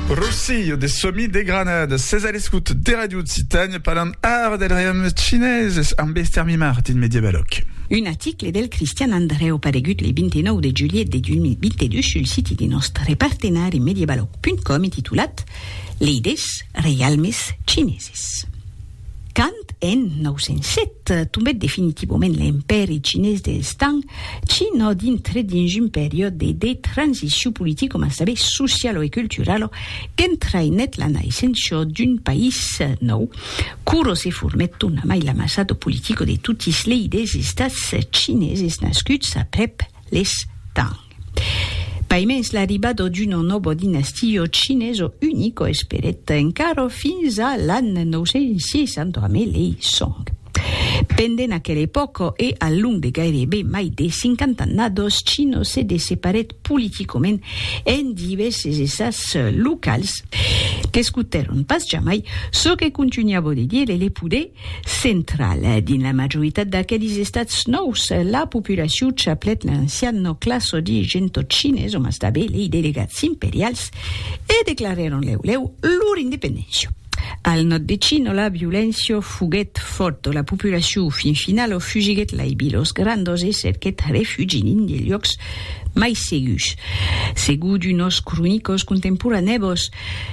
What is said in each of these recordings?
Rosillo de Somi de Granada, ses a l'escut de Radio Occitània parlant ara del reiaume chineses amb Esther Mimart dins Mediabalòc. Un article del Cristian Andrèu paregut le 29 de julhet de 2022 sul siti de nòstre partenari Mediabalòc.com e titulat Leidés reialmes chineses. Quand en 907 tombèt definitivament l'Empèri Chinés dels Tang, China dintre dins un periòde de transicion politico mas tanben socialo e culturalo qu'entraïnèt la naissença d'un país nòu, quora se formèt tornamai l'amassado politico de totis lei des estats chineses nascuts aprèp les Tang. Paimens l'arribado d'uno nobo dinastio chineso unico esperèt encara fins a l'an 965. Pendent aquela epòca e al long de gairebe mai de cinquanta annados, Chino se desseparèt politicament en divèrses estats locals, qu'escotèron pas jamai çò que contunhava de dire le poder Central. Dins la majoritat d'aquelis estats nòus, la populacion chaplèt l'ancian nò classodi Gentotchines, o mas tanben lei delegats imperials, e declarèron lèu lèu lor independéncia. Al nòd de Chino, la violéncia foguèt fòrta, la populacion fin finala fugiguèt lai vilos grandos e cerquèt refugi dins de luòcs mai segurs. Segur d'unos cronicors contemporanèbos,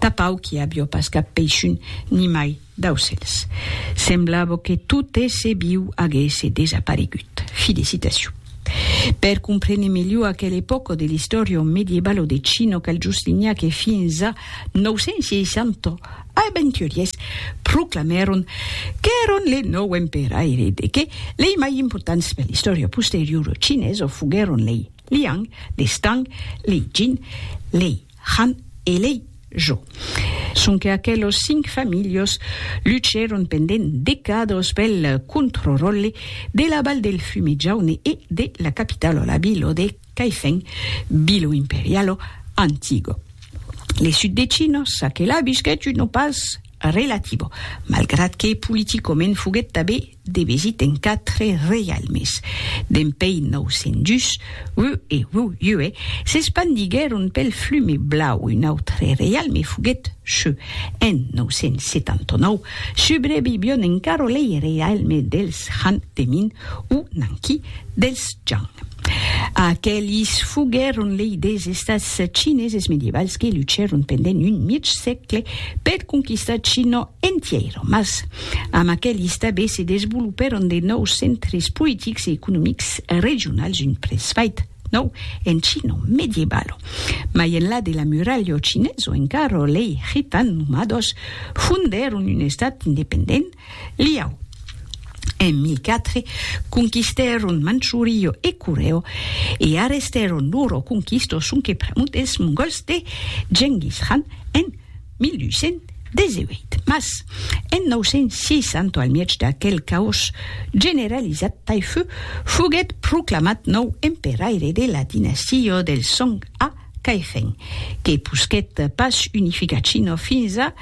Tapau qu'i avió pas cap peishun nimai d'aucèls. Semblavo que tot èsser viu aguèsse desaparegut. Fi de citacion. Per comprene melhor aquel epòco de l'istòria o medievalo de Chino cal juslinhar que fins a 960 aventuriers proclamèron qu'èron le nòu emperaire de que lei mai importants per l'istòria posteriora chinesa foguèron lei Liang, lei Stang, lei Jin, lei Han elei jo. Sonque aquelos cinc familhos luchèron pendent decados pel controròlle de la Val del Fume Jaune e de la capitalo, la Bilo de Caifèn, Bilo Imperialo Antigo. Le sud de Chino çaquelà visquèt un opàs relativo, malgrat que politicament foguèt tabé, de vesit en quatre reialmes. Dempei 902, Wu e Wu Yue s'espandiguèron pel Flume Blau, un autre reialme foguèt Shu. En 979, subrevivion encara lei reialme dels Han de Min o Nanqi dels Zhang. Aquelis foguèron lei des estats chineses medievals que luchèron pendent un mièg sègle per conquistar China entièra, mas amb aquelis tanben se desvolopèron de nòus centres politics e economics regionals, un presfait nòu en China medievala. Mai enlà de la muralha chinesa encara lei Khitan nomados fondèron un estat independent, Liao, en mi quatre, conquistèron Manchurio e Coreo e arrestèron loro conquistos sonque pr'amor dels Mongòls de Genghis Khan en 1818. Mas, en 960, al mièg d'aquel caòs generalizat, Taifu foguèt proclamat nòu emperaire de la dinastia dels Song a Cairèn que posquèt pas unificar China fins a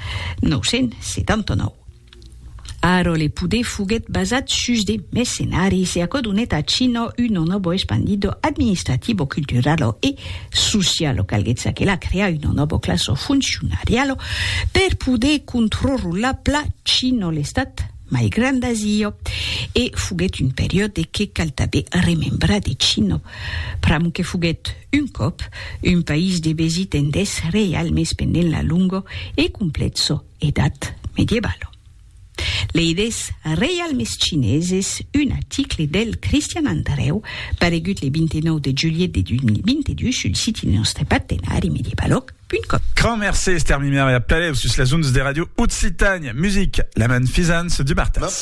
979. Ara le poder foguèt basat sus de mercenaris e aquò donèt a China una nòva espandido administrativo, culturalo e socialo. Calguèt çaquelà crear una nòva classa foncionariala per poder controrrolar pla China, l'estat mai grand d'Asia, e foguèt un periòde que cal tanben remembrar de China, pr'amor que foguèt Un còp, un país de vesit en deth reial mès pendent la longo e complètso Edat Medievalo. Lei des reial mès chineses, un aticle del Cristian Andrèu, paregut le 29 de julhet de 2022 sul siti de nòstre partenari Medievalòg punt com. Grand mercé Esther Mimer e a peleu sus les ondes de Radio Occitània Music, la manfisance du martès.